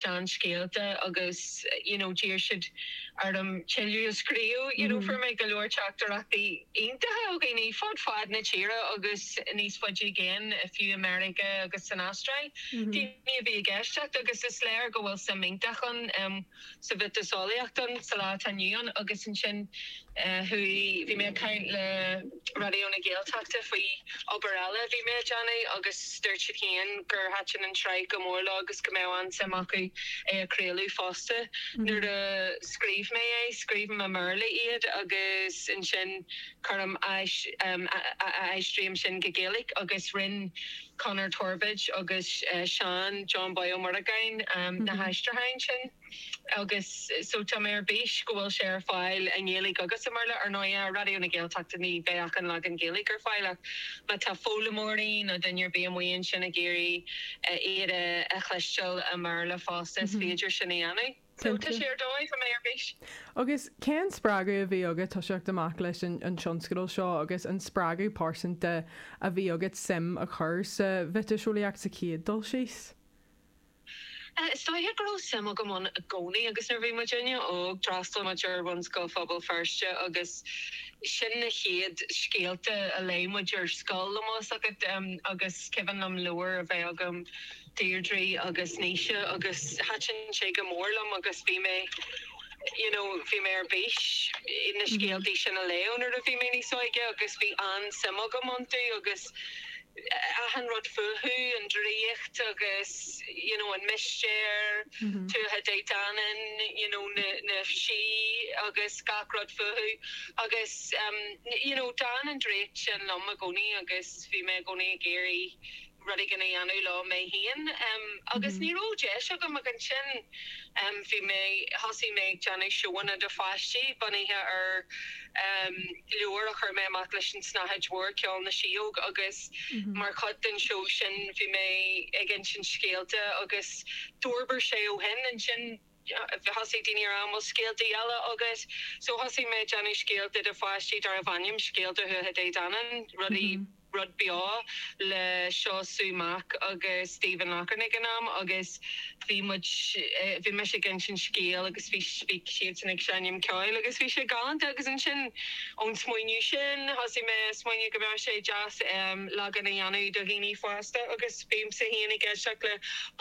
seanscéalta agus, you know d'iarr siad orm tuilleadh a scríobh. You know fuair mé go leor teachtaireachtaí iontacha ó dhaoine fud fad na tíre agus níos faide i gcéin, fiú i Meiriceá agus san Astráil. Daoine a bhí ag éisteacht agus is léir go bhfuil suim iontach ann sa mhiotaseolaíocht sa lá atá inniu ann agus ansin, chuaigh, bhí mé ag caint le Raidió na Gaeltachta faoi obair eile a bhí mé a dhéanamh agus dúirt siad féin gur thaitin an tsraith go mór leo agus go mbeadh an-suim acu é a chraoladh fosta. Nuair a scríobh mé é, scríobhaim i mBéarla iad agus ansin cuirim a aistríim sin go Gaeilge agus rinne Conor Torbóid agus Seán John Bán Ó Muireagáin na haistriúcháin sin. agus so tá mé ar bís go bhfuil sé ar fáil i nGaeilge agus i mBéarla. Ar ndóighe, ar Raidió na Gaeltachta ní bheidh ach an leagan Gaeilge ar fáil ach má tá foghlaimeoirí nó duine ar bith amuigh ansin ag iarraidh iad a chloisteáil i mBéarla fosta is féidir sin a dhéanamh. So tá sé ar dóigh, tá mé ar bís. Agus cén spreagadh a bhí agat toiseacht amach leis an tionscadal seo agus an spreagadh pearsanta a bhí agat suim a chur sa mhiotaseolaíocht sa chéad dul síos? Is dóiche go raibh suim agam ann i gcónaí agus nuair a bhí muidinne óg, d'fhreastal muid ar Bhunscoil Phobal Feirste agus sin na chéad scéalta a léigh muid ar scoil, bíonn a fhios agat, agus is cuimhin liom leabhar a bheith agam, Deirdre agus Naoise agus thaitin sé go mór liom agus bhí mé, you know, bhí mé ar bís na scéaltaí sin a léamh nuair a bhí mé níos óige agus bhí an-suim agam iontu agus. achan rud fúthu, an draíocht agus you know an mistéir, Tuatha Dé Danann, you know na na sí agus gach rud fúthu agus em you know d'fhan an draíocht sin liom i gcónaí agus bhí mé i gcónaí ag iarraidh rud éigin a dhéanamh leo mé féin em agus ní raibh deis agam go dtí ansin Bhí mé, thosaigh mé ag déanamh seóanna do pháistí bunaithe ar leabhar a chuir mé amach leis an tSnáthaid Mhór, Ceol na Síóg, agus mar chuid den seó sin bhí mé ag insint scéalta agus d'fhorbair sé ó shin. Ansin thosaigh daoine a rá, an bhfuil scéalta eile agat? So thosaigh mé ag déanamh scéalta do pháistí darbh ainm Scéalta Thuatha Dé Danann, rudaí. rud beo le Síomha Mac agus Stephen Loughran ag an am agus bhí muid, bhí mise ag insint scéil agus bhí siadsan ag seinm ceoil agus bhí sé galánta agus ansin ón smaoineamh sin thosaigh mé a smaoineamh go mbeadh sé deas leagan a dhéanamh do dhaoine fásta agus bímse féin ag éisteacht le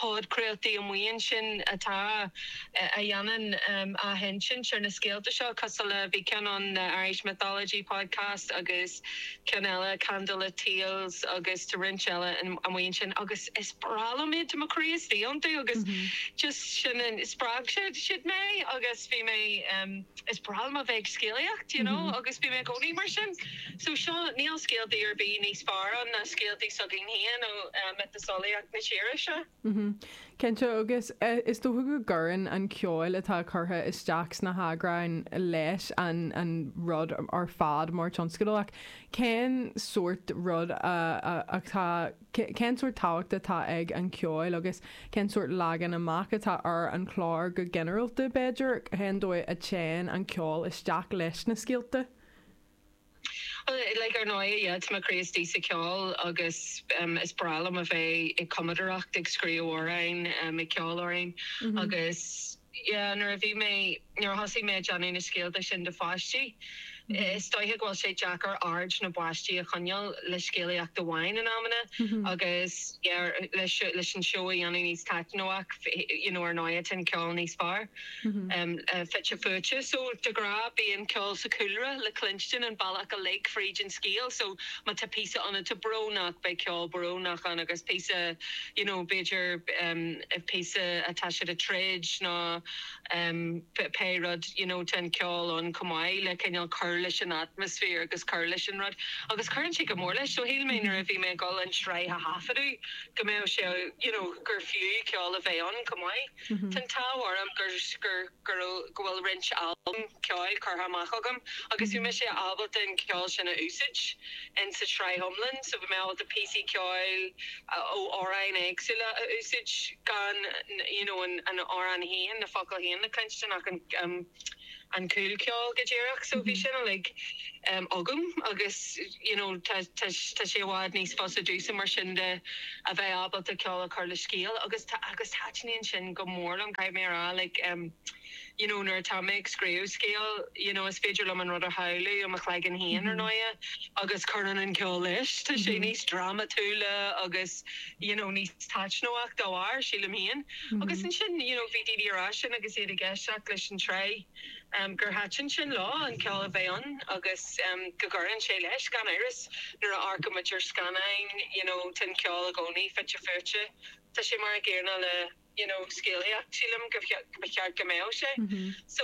podchraoltaí amuigh ansin atá, a dhéanann athinsint ar na scéalta seo cosúil le, bhí ceann ann The Irish Mythology Podcast agus. agus ceann eile, Candlelit Tales agus tá roinnt eile amuigh ansin agus is breá liom iad, tá mo chroí istigh iontu agus just sin an, spreag siad, siad mé agus bhí mé em, is breá liom a bheith ag scéalaíocht you know agus bhí mé i gcónaí mar sin so seo, níl scéaltaí ar bith níos fearr ann ná scéaltaí s'againn féin ó eh miotaseolaíocht na tíre seo. Cinnte, agus is dócha go gcuireann an ceol atá curtha isteach sna heagráin leis an rud ar fad mar tionscadal. Ach cén sórt rud atá, cén sórt tábhacht atá ag an cheol agus cén sórt leagan amach atá ar an chlár go ginearálta, b'fhéidir? Cén dóigh a dtéann an ceol isteach leis na scéalta? Like, ar ndóigh, yeah, tá mo chroí istigh sa cheol agus is breá liom a bheith ag cumadaireacht, ag scríobh amhráin, ag ceol amhráin agus, yeah, nuair a bhí mé, nuair a thosaigh mé ag déanamh na scéalta sin do pháistí, is dóiche go bhfuil sé deacair aird na bpáistí a choinneáil le scéalaíocht amháin in amanna agus, yeah, leis an seó a dhéanamh níos taitneamhach, you know, ar ndóighe, téann ceol em níos fearr. fite fuaite. So de ghnáth bíonn ceol sa chúlra le cluinstin an bealach uilig fríd an scéal. So má tá píosa ann atá brónach, beidh ceol brónach ann agus píosa, you know, b'fhéidir píosa atá siad ag troid nó pé rud, you know, tá an ceol ann chomh maith le cineál cur leis an atmaisféar agus cur leis an rud. Agus cuireann sé go mór leis. So shíl mé nuair a bhí mé ag dul an tsraith a thaifeadadh go mbeadh sé, you know, gur fiú ceol a bheith ann chomh maith. Tá an t-ádh orm go bhfuil roinnt albam ceoil curtha amach agam agus bhí mise ábalta an ceol sin a úsaid in sa tsraith iomlan so bhí mé ábalta píosaí ceoil ó amhráin éagsúla a úsaid gan you know an amhrán féin, na focail féin le cluinstin ach an. an cúl ceoil go díreach so bhí sin uilig agam agus you know tá tá tá sé i bhfad níos fusa domhsa mar sin de a bheith ábalta ceol a chur le scéal agus tá agus taitníonn sin go mór liom caithfidh mé a rá like em you know nuair atá mé ag scríobh scéal you know is féidir liom an rud a shamhlú i mo chloigeann féin ar ndóighe agus cuireann an ceol leis tá sé níos drámatúla agus you know níos taitneamhach dá bharr sílim féin. Agus ansin, you know, bhí daoine ag rá sin agus iad ag éisteacht leis an tsraith gur thaitin sin leo, an ceol a bheith ann agus go gcuireann sé leis, gan amhras. Nuair a amharcann muid ar scannáin, you know, tá an ceol i gcónaí fite fuaite. Tá sé mar an gcéanna le, you know, scéalaíocht, sílim go, go mba cheart go mbeadh sé. So.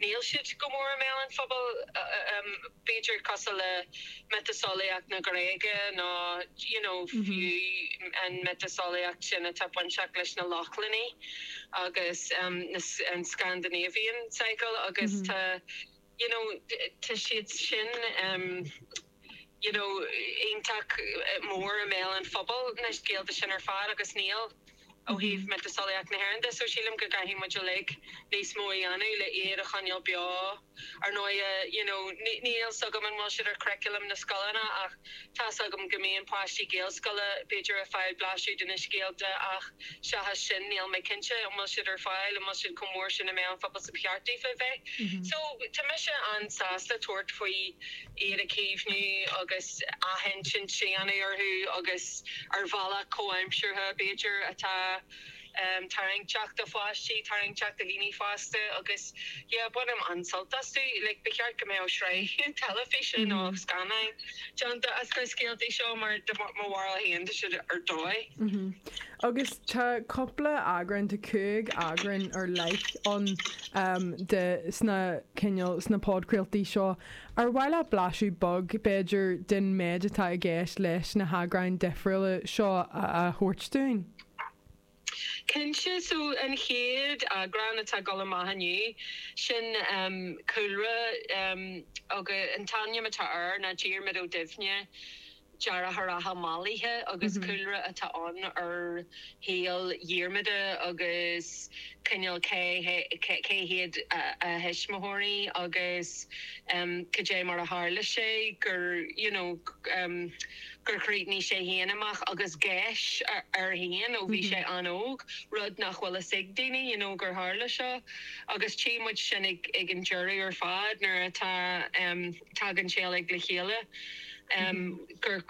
Níl siad go mór i mbéal an phobail, b'fhéidir, cosúil le miotaseolaíocht na Gréige nó, you know, fiú an mhiotaseolaíocht sin atá bainteach leis na Lochlannaigh agus an Scandinavian Cycle agus tá, you know, tá siad sin. you know iontach mór i mbéal an phobail na scéalta sin ar fad agus níl, ó thaobh miotaseolaíocht na hÉireann de, so sílim go gcaithfidh muid uilig níos mó a dhéanamh le iad a choinneáil beo. Ar ndóighe,, you know níl 's agam an bhfuil siad ar churriculum na scoileanna ach tá 's agam go mbíonn páistí Gaelscoile b'fhéidir a' fáil blaiseadh de na scéalta ach seachas sin níl mé cinnte an bhfuil siad ar fáil, an bhfuil siad chomh mór sin i mbéal an phobail 's ba cheart daofa bheith. So tá mise an-sásta tabhairt faoi. iad a chaomhnú agus athinsint a dhéanamh orthu agus ar bhealach comhaimseartha, b'fhéidir, atá tarraingteach do pháistí, tarraingteach do dhaoine fásta agus, yeah, bainim an-sult astu. Like, ba cheart go mbeadh sraith teilifíse nó scannán déanta as na scéaltaí seo mar, de mo bharúil féin, tá siad ar dóigh. Agus tá cúpla eagrán, tá cúig eagrán ar leith ann, de, sna, cineál, sna podchraoltaí seo. Ar mhaith leat blaiseadh beag, b'fhéidir, den méid atá i gceist leis na heagráin dhifriúla seo a thabhairt dúinn? Cinnte, so an chéad eagrán atá ag dul amach inniu, sin cúlra, agus an t-ainm atá air ná Diarmaid Ó Duibhne. deartháireacha mallaithe agus cúlra atá ann ar shaol Dhiarmada agus cineál cé hiad a thuismitheoirí agus cad é mar a tharla sé gur you know gur chríochnaigh sé féin amach agus geis air féin ó bhí sé an-óg, rud nach bhfuil fhios ag daoine you know gur tharla seo agus tchí muid sin ag an deireadh ar fad nuair atá. tagann sé uilig le chéile, gur,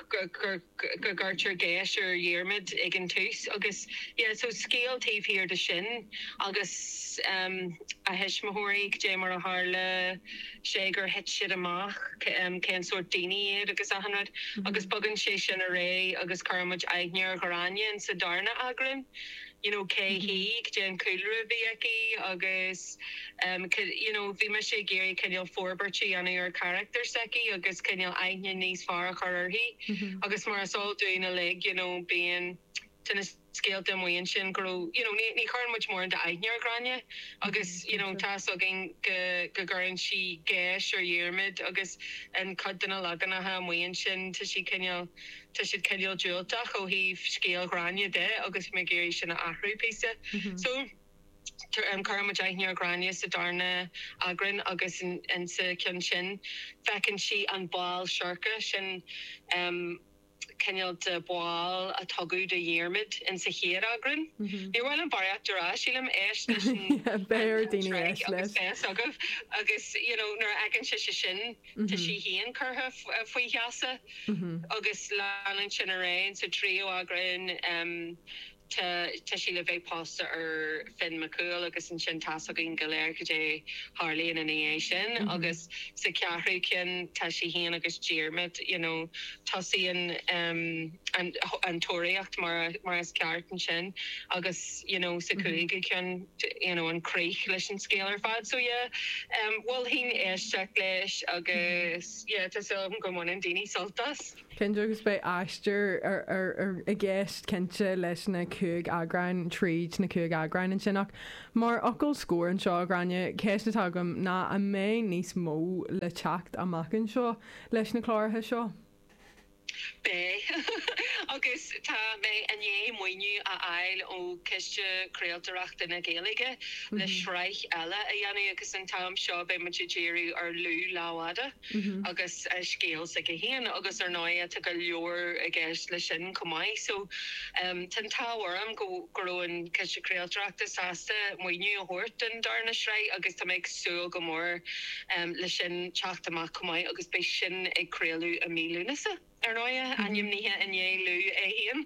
gcuirtear geis ar Dhiarmaid ag an tús agus yeah, so scéal taobh thiar de sin agus a thuismitheoirí, goidé mar a tharla sé gur thit siad amach, cén sórt daoine iad agus achan rud agus bogann sé sin ar aghaidh agus cuirfidh muid aithne ar Ghráinne sa darna eagrán. you know cé hí, cén cúlra a bhí aici agus em you know bhí mise ag iarraidh cineál forbairt a dhéanamh ar charachtar s'aici agus cineál aithne níos fearr a chur uirthi agus mar is eol dúinn uilig you know bíonn te na scéalta amuigh ansin go raibh you know ní chuireann muid mórán aithne ar Ghráinne agus you know tá a fhios againn go gcuireann sí geis ar Dhiarmaid agus i gcuid de na leaganacha amuigh ansin tá sí cineál tá siad cineál diúltach ó thaobh scéal Ghráinne de agus bhí mé ag iarraidh sin a athrú píosa so cuireann muid aithne ar Ghráinne sa darna eagrán agus insa cheann sin feiceann sí an ball seirce sin cineál de bhall a tugadh do Dhiarmaid insa chéad eagrán. Níor mhaith liom barraíocht a rá sílim, éist leis an tsraith agus beidh a fhios agaibh agus you know nuair a fheiceann sise sin, tá sí féin curtha faoi gheasa agus leanann sin ar aghaidh sa tríú eagrán tá sí le bheith pósta ar Fionn Mac Cumhaill agus ansin tá a fhios againn go léir cad é a tharlaíonn ina dhiaidh sin agus sa cheathrú ceann tá sí féin agus Diarmaid you know tosaíonn an tóraíocht mar is ceart ansin agus you know sa chúigiú ceann you know an chríoch leis an scéal ar fad so yeah em mholfainn éisteacht leis agus yeah tá súil agam go mbaineann daoine sult as. Cinnte agus beidh aistear i gceist cinnte leis na cúig eagráin tríd na cúig eagráin ansin ach mar fhocal scór anseo a Ghráinne, ceist atá agam ná an mbeidh níos mó le teacht amach anseo leis na cláracha seo? Beidh, agus tá mé i ndiaidh maoiniú a fháil ó Chiste Craoltóireachta na Gaeilge le sraith eile a dhéanamh agus an t-am seo beidh muid ag díriú ar Lú Lámhfhada agus an scéal s'aige féin agus ar ndóigh tá go leor i gceist leis sin chomh maith so tá an t-ádh orm go go raibh an Ciste Craoltóireachta sásta maoiniú a thabhairt don darna sraith agus tá mé ag súil go mór leis sin teacht amach. chomh maith agus beidh sin ag craoladh i mí Lúnasa, ar ndóiche, ainmnithe i ndiaidh Lú é féin.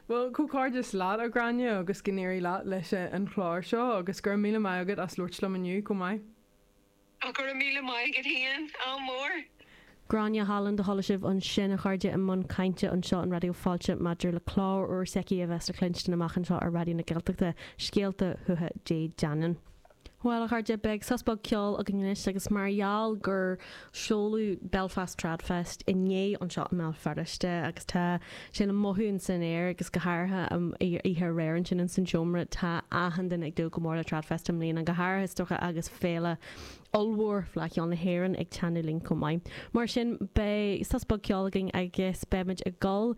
Bhuel, comhghairdeas leat, a Ghráinne, agus go n-éirí leat leis an chlár seo, agus go raibh míle maith agat as labhairt liom inniu chomh maith. Ach go raibh míle maith agat féin, ádh mór! Gráinne Holland a chuala sibh ansin, a chairde, i mbun cainte anseo ar Raidió Fáilte maidir le clár úr s'aici a bheas le cluinstin amach anseo ar Raidió na Gaeltachta, Scéalta Thuatha Dé Danann. Bhuel, a chairde, beidh sos beag ceoil againn anois agus mar gheall gur seoladh Belfast Trad Fest inné anseo i mBéal Feirste agus tá sin le mothú in san aer agus go háirithe oíche aréir ansin insan tseomra, tá achan duine ag dúil go mór le Trad Fest i mbliana, go háirithe is dócha agus féile ollmhór Fleadh Cheoil na hÉireann ag teannadh linn chomh maith. Mar sin, beidh sos beag ceoil againn agus beimid ag dul